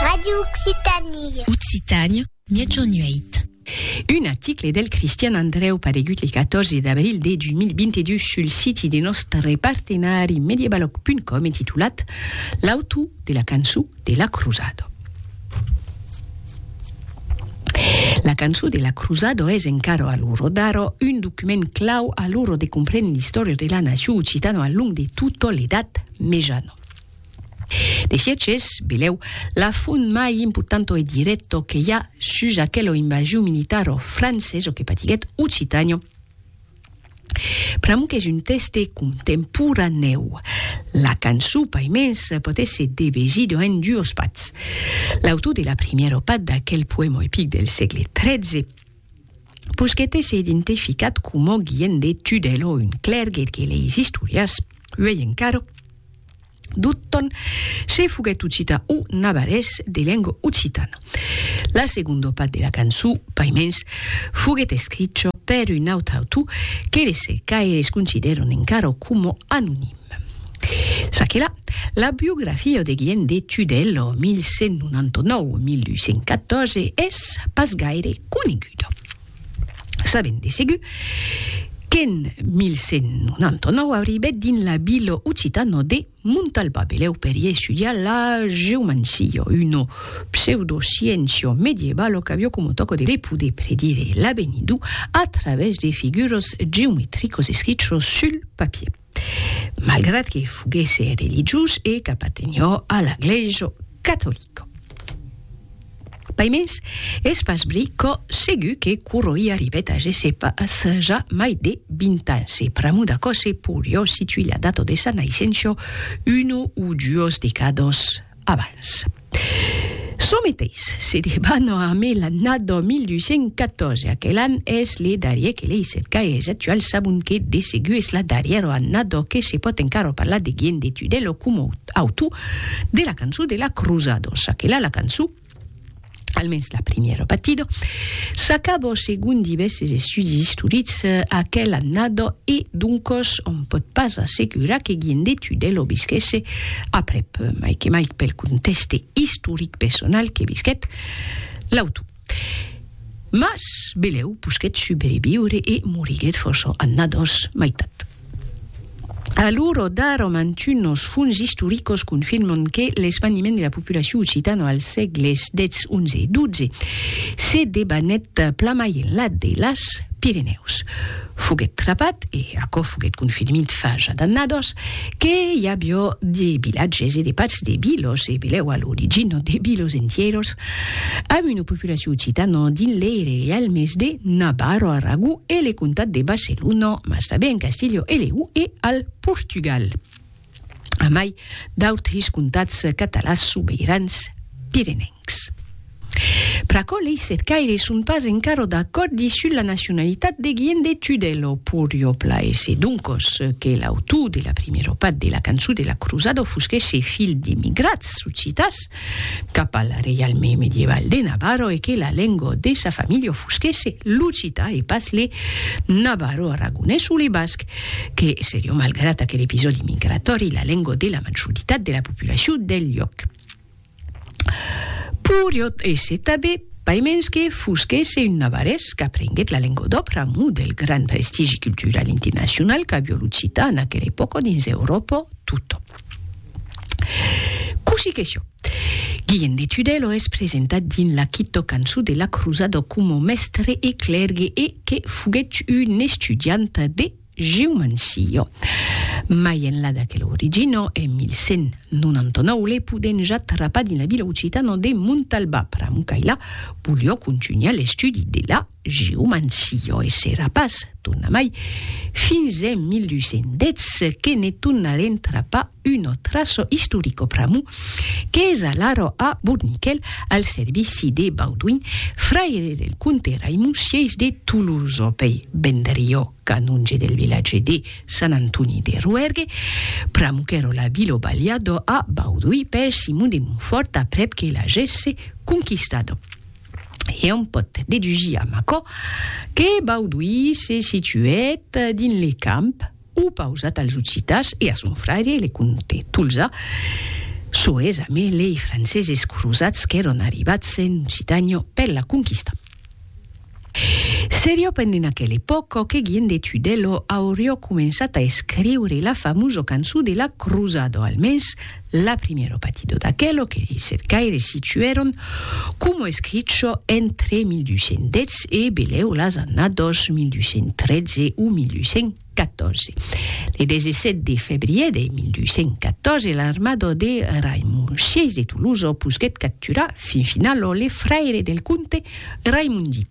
Radio Occitanie. Occitània, Mièg Nuèit. Un article del Cristian Andrèu paregut le 14 d'abril de 2022 sul siti de nòstre partenari Mediebalog.com e titulat L'autor de la cançó de la cruzada. La cançó de la cruzada es encara a l'ora d'ara un document clau a l'ora de comprendre l'istòria de la nacion occitana al long de tota l'Edat Mejana. De Sièges, belèu, la font mai importanto e dirècto que i a sus aquelo invasion militar o francés o que patiguèt Occitània, pr'amor qu'es un tèxte contemporanèu, la cançon paimens pòt èsser devesida en duos pats. L'autor de la primièra pat d'aquel poèma epic del sègle XIII, Pus que t'es identificat coma guien de Tudèl o un clèrgue que leis istorias, uèi encara, Dutton se foguèt occitan o navarrés de lenga occitana. La segonda part de la cançó, paimens, foguèt escricha per un autre autor que les cercaires considèran encara coma anonim. Çaquelà, la biografia de Guillem de Tudèl, 1199-1214, es pas gaire coneguda. Sabèm de segur qu'en 1199 arribèt dins la vila occitana de Montalbà Belèu per i estudiar la geomancia, una pseudosciéncia medievalo qu'aviá coma tòca de poder predire l'avenidor a travèrs de figuras geometricas escrichas sul papier. malgrat que foguèsse religiós e qu'apartenhó a la glèisa catolica. Pas mens, es pas bri cò segur que Curoi arribèt a gessé pas ja mai de vint ans e pr'amor d'aquò se porió situir la data de sa naissença, una o duas decàdas abans. Çò meteis se debana amé l'annada 1814, aquel an es le darrier que lei cercai es actuals sabon que de segur es la darrièra annada que se pòt encara parlar de Gien de Tudèlo coma autor de la cançon de la Cruzada, çaquela la cançon almens la primièra partida, s'acaba segon divèrses estudis istorics eh, aquela annada e doncos on pòt pas assegurar que Guillem de Tudèl o visquèsse aprèp, mai que mai pel contèxte istoric personal que visquèt l'autor. Mas belèu posquèt subreviure e moriguèt fòrça annadas mai tard. A l'uro d'ara, mantunos fons istoricos confirman que l'esvaniment de la populacion occitana als sègles xi, xi e xii se debanèt plamai enlà de las Pirenèus. Foguèt trapat, e aquò foguèt confirmit fa ja d'annadas, que i aviá de vilatges e de parts de vilas, e belèu a l'origina de vilas entièras, Amb una populacion occitana dins l'Eire e al mes de Navarro, Aragó e le comtat de Barcelona, mas tanben en Castilhau e Leó e al Portugal, a mai d'autres comtats catalans sobeirans pirenencs. Pr'aquò lei cercaires son pas encara d'acòrdi sus la nacionalitat de Guillem de Tudèl o Puriopla e se doncos que l'autor de la primièra part de la cançon de la crosada fosquèsse filh d'emigrats occitans, cap al reialme medieval de Navarro e que la lengua de sa familha fusquèsse l'occità e pas le navarro-aragonés o le basc, que serion malgrat aquel episòdi migratòri la lengua de la majoritat de la populacion del luòc. Poriot èsser tanben paimens que fusquèsse un navarrés qu'aprenguèt la lengua d'òbra a mou del grand prestigi cultural internacional qu'avió l'occità en aquela epòca dins Euròpa tota. Cossí que sió, Guilhem de Tudèlo es presentat dins la quito cançó de la crosada coma mèstre e clèrgue e que foguèt un estudiant de geomancia. Mai enlà d'aquela origina, en 1199 le podèn ja trapar dins la vila occitana de Montalbà, pr'amor qu'ailà volió contunhar l'estudi de la Giu Mancio e s'èra pas tornamai fins en 1810 que ne tornarem trapar un otraço istorico pr'amor qu'es alara a Bourniquel al servici de Baudouin, fraire del comte Raimon-Sièis de Tolosa, pei Vendriò, canonge del vilatge de Sant Antoni de Roèrgue, pr'amor qu'èra la vila balhada a Baudouin per Simon de Montfòrt aprèp que l'agèsse conquistada. e òm pòt dedugir amb aquò que Bauduí se situèt dins le camp opausat als occitans e a son fraire le comte Tolzà, soes amé lei franceses crosats qu'èron arribats en Occitània per la conquistar. Seriá pendent aquela epòca que Guillem de Tudèlo auriá començat a escriure la famosa cançó de la crosada, o almens La primièro patidor d'aquelo que lei set caires situèron como escricho entre 1210 e beleu las annados 1213 o 1214. Le 17 de febrier de 1214 l'armado de Raimon vi de Toloso posguèt capturar fin finalo le fraire del comte Raimondi.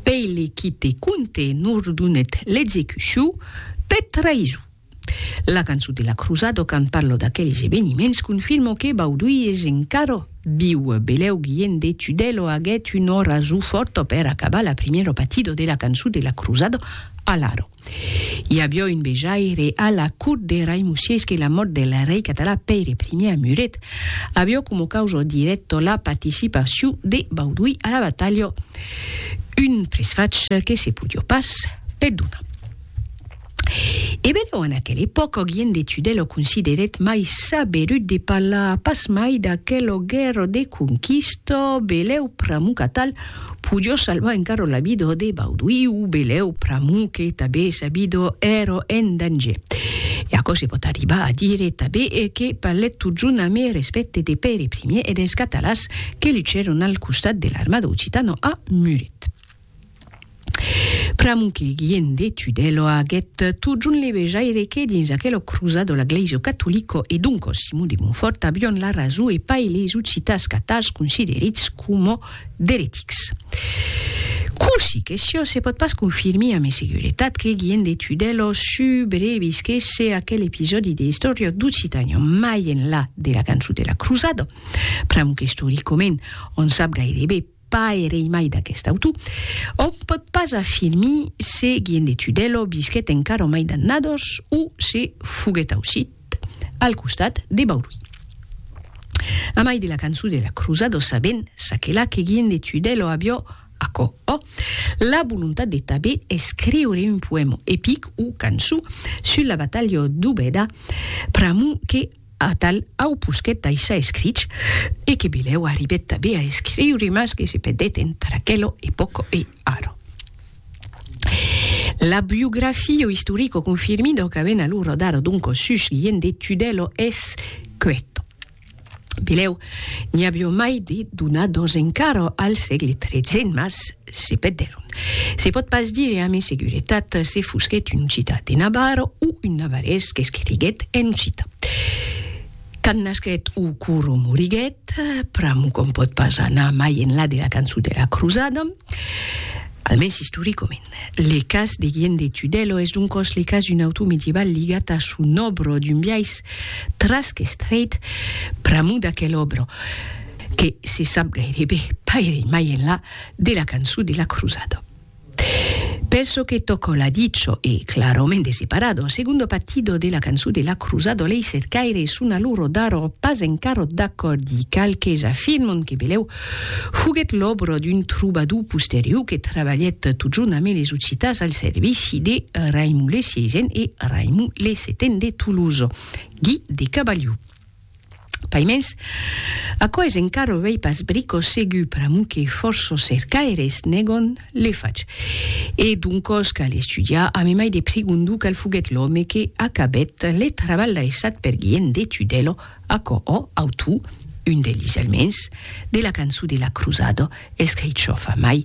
Pei le quite comte nordonèt l'execucion per traison. La cançon de la Cruzado quand parlo d'aqueles eveniments confirmo que Bauduy es encara viu. Belèu Guilhèn de Tudèlo aguèt un orazu fòrta per acabar la primièra batida de la cançon de la Cruzado a l'Aro. I aviá un vejaire a la cort de Raimusièis que la mòrt del rei català Pèire I a Muret aviá coma causa dirècta la participacion de Bauduy a la batalha, un presfach que se podiá pas perdonar. E benlèu en aquela epòca Augien de Tudèl o considerèt mai saberut de parlar pas mai d'aquela guèrra de conquista, belèu pr'amor qu'atal podió salvar encara la vida de Bauduí o belèu pr'amor que tanben sa vida èra en danger. E aquò se pòt arribar a dire tanben que parlèt totjorn amb respècte de Pèire Primièr e dels catalans que luchèron al costat de l'armada occitana a Muret. Pr'amor que Guillem de Tudèlo aguèt totjorn le vejaire que dins aquelo cruzado la glèisa catolica e doncos Simon de Montfòrt avion la rason e pas eles occitans catals considerits coma d'eretics. Cossí que siá, se pòt pas confirmir amé seguretat que Guillem de Tudèlo subrevisquèsse aquel episòdi de istòria d'Occitània, mai enlà de la cançó de la cruzada, pr'amor qu'istoricament on sap gairebe Paerei mai d'aquest autor, òm pòt pas afirmir se Guillem de Tudèlo visquèt encara au mai d'annados o se foguèt aucit al costat de Bauduin. A mai de la cançon de la crosado sabèm çaquelà que Guillem de Tudèlo avió, aquò ò, la volontat de tanben escriure un poèma epic o cançon sus la batalha d'Obeda pr'amor que Atal au posquet daishar escrich, e que Bilèu arribèt tabé a escriure mas que se pedèt entre aquelo e poco e aro. La biografio istorico confirmi dau qu'avèn alu rodaro d'un cos sus guien de Tudèlo es queto. Bilèu n'i avió mai de donados encaro al sègle tretze mas Se pèdèron. Se pòt pas dire amé seguretat se fusquèt un occitan de Navarra o un navarrés qu'escriguèt en occitan. Quand nasquèt o cor o moriguèt, pr'amor qu'òm pòt pas anar mai enlà de la cançon de la crosada, almens istoricament. Le cas de Guillem de Tudèlo es doncòs le cas d'un autor medieval ligat a son òbra d'un biais trasc estreit pr'amor d'aquel òbra, que se sap gairebe pas irei mai enlà de la cançon de la crusada. Per çò que tòca la dicho e clarament de separado, un segundo partido de la cançon de la crusada lei cercaires son a loro daro pas encara d'acòrdi, qualques afirman que Belèu foguèt l'òbra d'un trobador posterior que trabalhèt totjorn amé les occitans al servici de Raimon le Sièisen e Raimon le Setain de Tolosa, Guy de Cabaliu. Paimens, aquò es encara uei pas brico segur pr'amor que fòrço cercaires negon l'efach. E doncòs cal estudiar, amemai de pregondor qual foguèt l'òme que acabèt le trabalh daissat per Guilhèm de Tudèlo, aquò ò autor, un de lhis almens, de la cançon de la crosada, escrichòfa mai